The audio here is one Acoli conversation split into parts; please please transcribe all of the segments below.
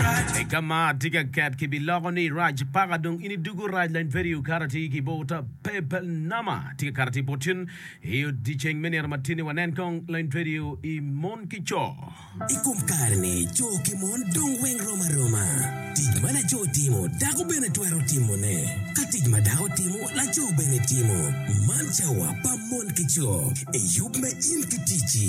I ka ma atye ka ket ki bi loko ni rac paka dong ini dugu rac lain peri okato atir ki bor ta pebel nama atye ka kato atir bor cen i odiceng me nino matini wa nen kong lain peri o i mon ki coo. I kom kare ni coo ki mon dong weng rom aroma. Tic ma lacoo timo dako bene twero timo ne. Ka tic ma dako timo lacoo bene timo. Man cawa pa mon ki coo. I yub me in ki ticci.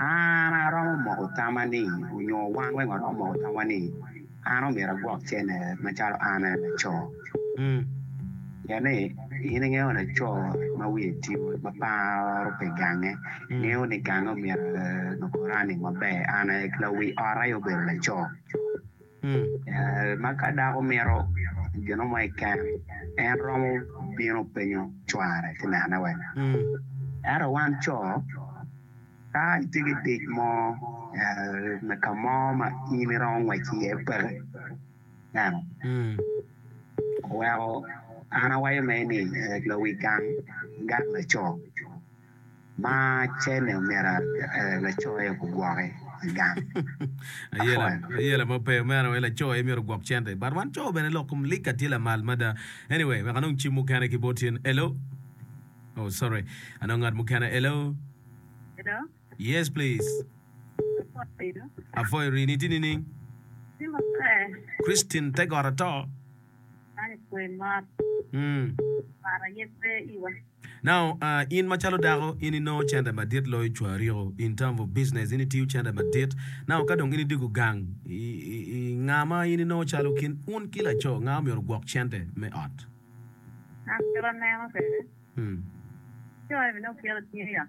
An aromo moko tamani, onyo wan weng waromo moko tamwa ni an omyero agwok cene macalo an aye laco. Ung, pien ni in ingeyo laco ma wiye tye ma paro pi gange ngeyo ni gange omyero loko running maber, an aye lawi ot aye obedo laco. Ma ka dako mito gino mo i keno, en romo bino penyo cware ci nene wek. Ento wan co, ka itye ki tic mo me ka mo ma in iromo ngwec iye peke, ineno, weko an awaco mere ni lawil gang laco. Ma cene omera lacoe ogwoke i gang. Ayela, ayela ma pe omera we lacoe myero ogwok cente. But wan co bene lok kom lika tye lamal mada. Anyway, wek anong cim mukene ki bot in. Hello? Oh, sorry. Anong ngat mukene. Hello? Hello? Yes, please. Apoi rini tye nining? Christine Tegot ato. Man ekwoyo mot. Par aye pe iwa. Now uh, in macalo dako in inongo cente madit loyo cwa ariko in term of business in itiyo cente madit now ka dong in idiko gang i, i, i nga ma in inongo calo kin un ki laco nga omyero gwok cente me ot? An kit aneno kwede, Hmm. laco eni bene oketo tye i ot.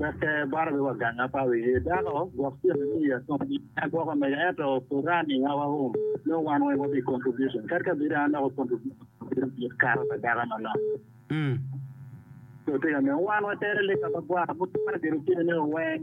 Wacce baro be wa ganga pa wi ye dako gwok tyen ni ni ya kom ni ya gwoko mega ento Quran ni ya wa hum no wan weng wa bi contribution kadi ka bedo anoko contribution ma bedo mit kato pa dako ma no so tye ka neno wan wa tere lika ma gwara mukene bedo tyen ni weng